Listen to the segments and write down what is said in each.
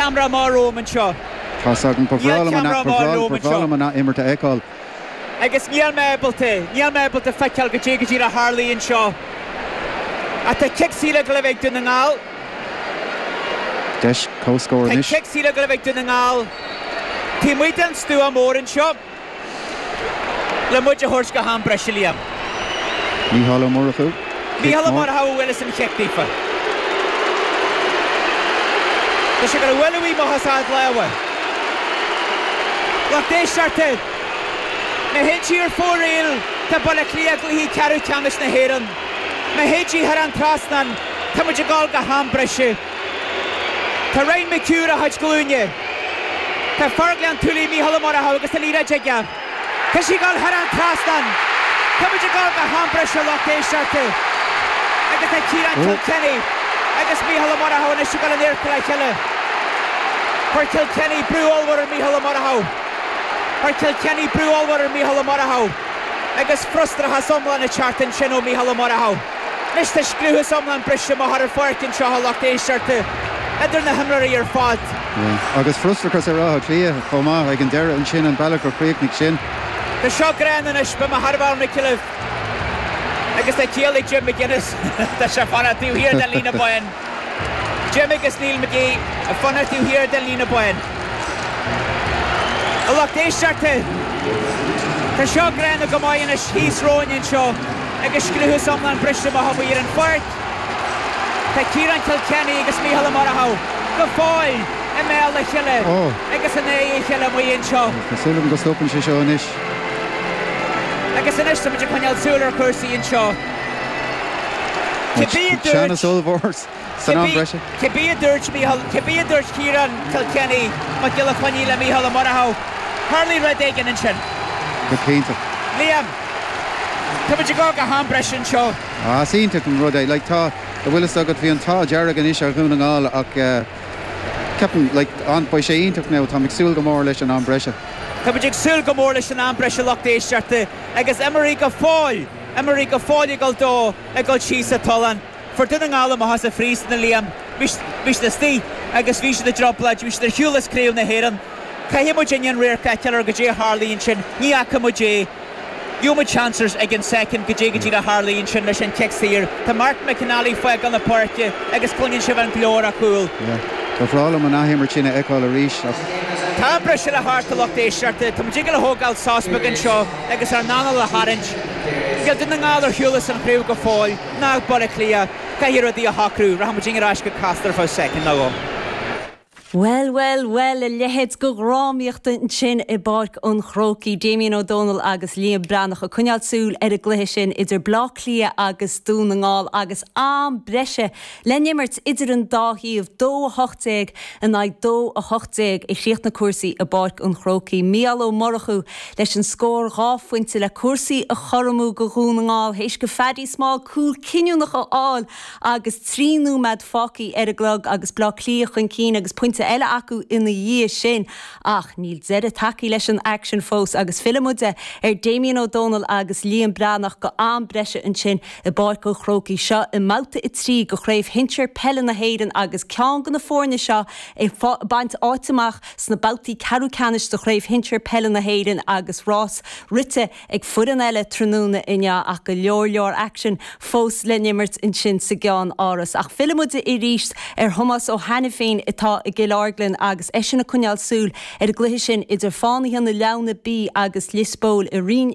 Ceamara maith romham anseo. Tá's agam. Ba bhreá liom an. Ba bhreá. Ba bhreá liom an ath-imirt a fheiceáil. Agus níl mé ábalta. Níl mé ábalta feiceáil goidé goidé a tharlaigh anseo. Ach tá cic saor ag Gliwice ag Dún na nGall. Deis comhscóir anois. Tá cic saor ag Gliwice ag Dún na nGall. Taobh amuigh den stua mór anseo. Le muid a thabhairt go ham breise Liam. Mícheál Ó Murchú, Cic Mícheál Ó Murchú a bhuailfeas an chic daofa. Tá sé ag bualadh amach as a lámha a lucht éisteachta. Má théann sí ar fóraoil tá Baile Átha Cliath i gcluiche ceathrú ceannais na hÉireann. Má théann sí thar an trasnán tá muid ag dul go ham breise. Tá Ryan McHugh ar a chuid glúine. Tá Fear Ghleann tSúilí Mícheál Ó Murchú agus an liathróid aige. Tá sí ag dul thar an trasnán. Tá muid ag dul go ham breise a lucht éisteachta agus tá Ciarán Kilkenny agus Mícheál Ó Murchú anois ag dul in adharca le chéile. Chuir Kilkenny brú ollmhór ar Mícheál Ó Murchú. Chuir Kilkenny brú ollmhór ar Mícheál Ó Murchú agus frustrachas iomlán ag teacht ansin ó Mhícheál Ó Murchú. Anois tá scliúchas iomlán briste amach ar an pháirc anseo a lucht éisteachta, idir na himreoirí ar fad. Agus frustrachas ar Áth Cliath chomh maith ag an deireadh ansin, an bealach a chríochnaigh sin. Tá seo gránna anois, beidh mé thar a bheith ionraic libh. Agus tá ciall ag Jim McGuinness, tá sé ag fanacht taobh thiar den líne bán. Jim agus Neil McGee ag fanacht taobh thiar den líne bán. A lucht éisteachta, tá seo gránna go maith anois thíos romhainn anseo agus scliúchas iomlán briste amach amuigh ar an pháirc. Tá Ciarán Kilkenny agus Micheál Ó Murchú go fóill i mbéal a chéile agus in aghaidh a chéile amuigh anseo. Tá súil agam go stopann sé seo anois. Agus anois, tá muid ag coinneáil súil ar chúrsaí anseo. Teannas ollmhór san am breise. Cibé a dúirt Micheál, cibé a dúirt Ciarán Kilkenny, Mac Giolla Chainnigh le Micheál Ó Murchú, tharlaigh rud éigin ansin. Go cinnte. Liam, tá muid ag dul go ham breise anseo. Á, is iontach an rud é. Like, tá, a bhfuil fhios agat, bhí an t-ádh dearg anois ar Dhún na nGall ach eh ceapaim, like, an, beidh sé iontach now, táim ag súil go mór leis an am breise. Tá muid ag súil go mór leis an am breise a lucht éisteachta agus imreoirí go fóill! imreoirí go fóill ag dul dó ag dul síos sa tollán. Fuair Dún na nGall amach as an phríosún é Liam bhí siad istigh agus bhí siad i dtrioblóid, bhí siad ar shiúl as craobh na hÉireann. Caithfidh muid inniu an radharc a fheiceáil ar goidé a tharlaigh ansin. Ní fhaca muid é. Gheobhaidh muid seans air ag an soicind goidé go díreach a tharlaigh ansin leis an chic saor. Tá Martin McNally ag fágáil na páirce agus cluineann sibh an glór ar a chúl. Ba bhreá liom an athimirt sin a fheiceáil arís ach. Tá am breise le theacht a lucht éisteachta. Tá muid ag dul a thógáil sos beag anseo. agus ár n-anáil a tharraingt. Níl Dún na nGall ar shiúl as an chraobh go fóill ná Baile Átha Cliath, caithfidh rudaí a shocrú, rachaimidne ar ais go Casla fá choinne soicind nó dhó. Bhuel, bhuel, bhuel, a leithéid de dhrámaíocht ansin i bPáirc an Chrócaigh. Damien Ó Dónaill agus Liam Breathnach ag coinneáil súil ar an gcluiche sin idir Baile Átha Cliath agus Dún na nGall agus am breise Le n-imirt idir an dá thaobh, dó 18 in aghaidh dó 18, a chríochnaigh cúrsaí i bPáirc an Chrócaigh, Mícheál Ó Murchú leis an scór dhá phointe le cúrsaí a chothromú go Dhún na nGall théis go Phaddy Small cúl cinniúnach a fháil agus trí nóimeád fágthaí ar an gclog agus Bleá Cliath chun cinn agus pointe eile acu ina dhiaidh sin ach níl deireadh tagthaí leis an aicsean fós agus fillfimid ar Damien Ó Dónaill agus Liam Breathnach go am breise ansin. I bPáirc an Chrócaigh seo i mBabhta 3 de Chraobh Shinsir Peile na hÉireann agus ceann de na foirne seo ag baint áit amach sna babhtaí ceathrú ceannais de Chraobh Shinsir Peile na hÉireann agus rás rite ag foireann eile tráthnóna inniu ach go leor leor aicsean fós le n-imirt ansin sa gceann-áras ach fillimid arís ar Thomás Ó hAiniféin atá i gCill Orglan agus eisean ag coinneáil súil ar an gcluiche sin idir Fánaithe na Leamhna B agus Liospóil i Roinn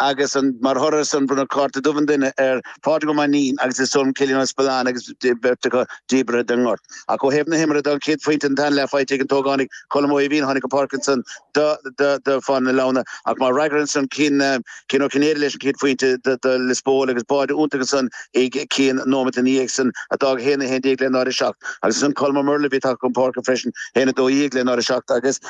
agus mar thoradh ar san bronnadh cárta dubh an duine ar Phádraig Ó Mainnín agus ar Cillian Ó Spealáin agus an bheirt acu díbeartha den ngort. Ach ó thaobh na himeartha de an chéad phointe an tarna leath faighte ag an t-ógánaigh Colm Ó hAoibhín, a tháinig chun páirce ansan do Fánaithe na Leamhna ach mar fhreagra ansan Cian Ó Cinnéide leis an chéad phointe do Lios Póil agus báide iontach ansan ag Cian nóimeat ina dhiaidh san a d'fhág 1-11 le 0-7 agus ansan Colm Ó Muirleabhaigh a bhí tagtha chun páirce freisin, 1-12 le 0-7, agus.